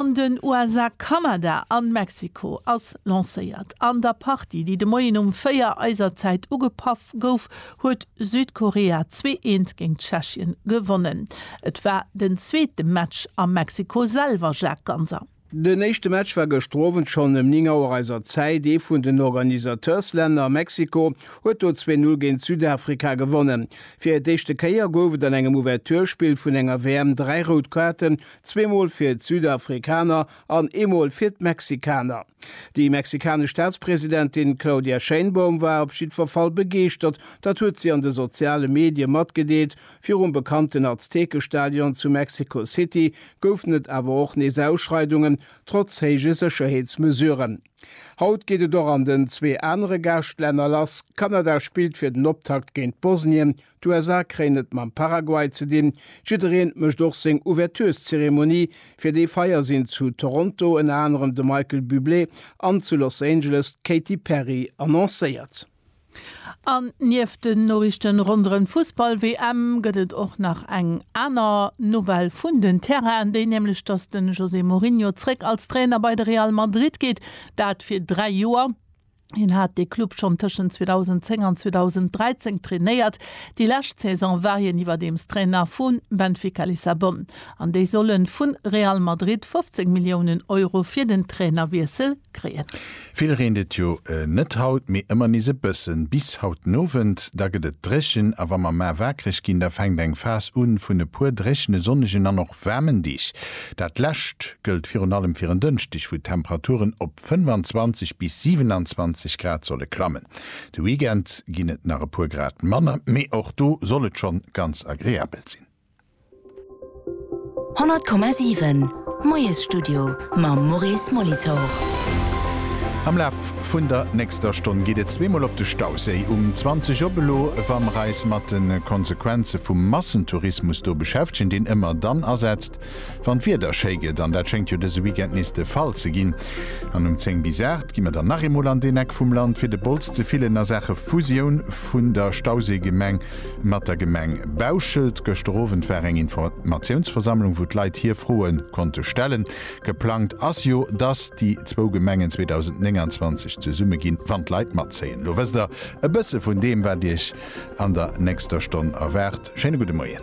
An den USA, Kanada an Mexiko ass lancéiert. An der Partie, déi de Moien um 4 eiser Zäit ugepaff gouf, huet Südkorea zwee eent géint Tschechien gewonnen. Et war den zweete Match a Mexiko selwer, Jacques Ganser. Den éischte Match war gëschter Owend schonn ëm 9 Auer eiser Zäit. Ee vun den Organisateurs-Länner, Mexiko, huet do zwee Null géint Südafrika gewonnen. Fir d'éischte Kéier gouf et an engem Ouverture-Spill vun enger WM dräi rout Kaarten, Zweemol fir d'Südafrikaner an eemol fir d'Mexikaner. Déi mexikanesch Staatspresidentin Claudia Sheinbaum war op jiddwer Fall begeeschtert, dat huet si an de soziale Medie matgedeelt. Virum bekannten Aztekestadion zu Mexico City goufen et awer och nees Ausschreidungen, trotz héije Sécherheetsmesuren. Haut geet et och an den zwee anere Gaaschtlänner lass. Kanada spillt fir den Optakt géint Bosnien, D'USA kréien et mam Paraguay ze dinn. Jiddereen mécht och seng Ouvertureszeremonie. Fir déi Feier sinn zu Toronto ënner anerem de Michael Bublé an zu Los Angeles d'Katy Perry annoncéiert. An nieft den Noriichten ronderëm d'Fussball-WM gëtt et och nach eng aner Nouvelle vun den Terrainen, déi nämlech, dass de José Mourinho zréck als Trainer bei de Real Madrid geet, dat fir dräi Joer. Hien hat dee Club schonn tëschent 2010 an 2013 trainéiert. Déi lescht Saison war hien iwwerdeems Trainer vu Benfica Lissabon an déi solle vu Real Madrid 15 Milliounen Euro fir den Trainerwiessel kréien. Vill reent et jo net haut, mee ëmmer nees e bëssen. Bis haut den Owend, da gëtt et dréchen a wa mer mar wakereg ginn, da fänkt eng Phas u vun e puer dréchene, sonnegen an och waarmen Deeg. Dat lescht gëllt virun allem fir en Dënschdeg, wou d'Temperaturen op. 25 bis 27 Grad solle klammen. De Weekend ginn et nach e puer Grad manner, mee och do soll et schonn ganz agreabel sinn. 100,7 Moiesstudio mam Maurice Molitor. Am Laf vun der nächster Stonn geet et zweemol op de Stauséi. Um 20 op elo, wa mer eis mat de Konsequenze vum Massentourismus do beschäftegen, deen ëmmer dann asetzt, Wann d'Wieder schéi gëtt, an dat schéngt jo dëse Weekend nees de Fall ze ginn, an um 10 bis 8 gi mer dann nach eemol an deen Eck vum Land, fir de Bols ze fillen a Saache Fusioun vun der Stauséigemeng mat der Gemeng Bauschelt. Gëschter Owend war eng Informatiounsversammlung, wou d'Leit hir Froe konnte stellen. Geplangt ass jo, dass déi zwou Gemengen 2029 zesumme ginn, wann d'Leit matzéien. Lo wësst der e bësse vun deem, wat Iech an der nächster Stonn erwaart. Schéine gudde Moien.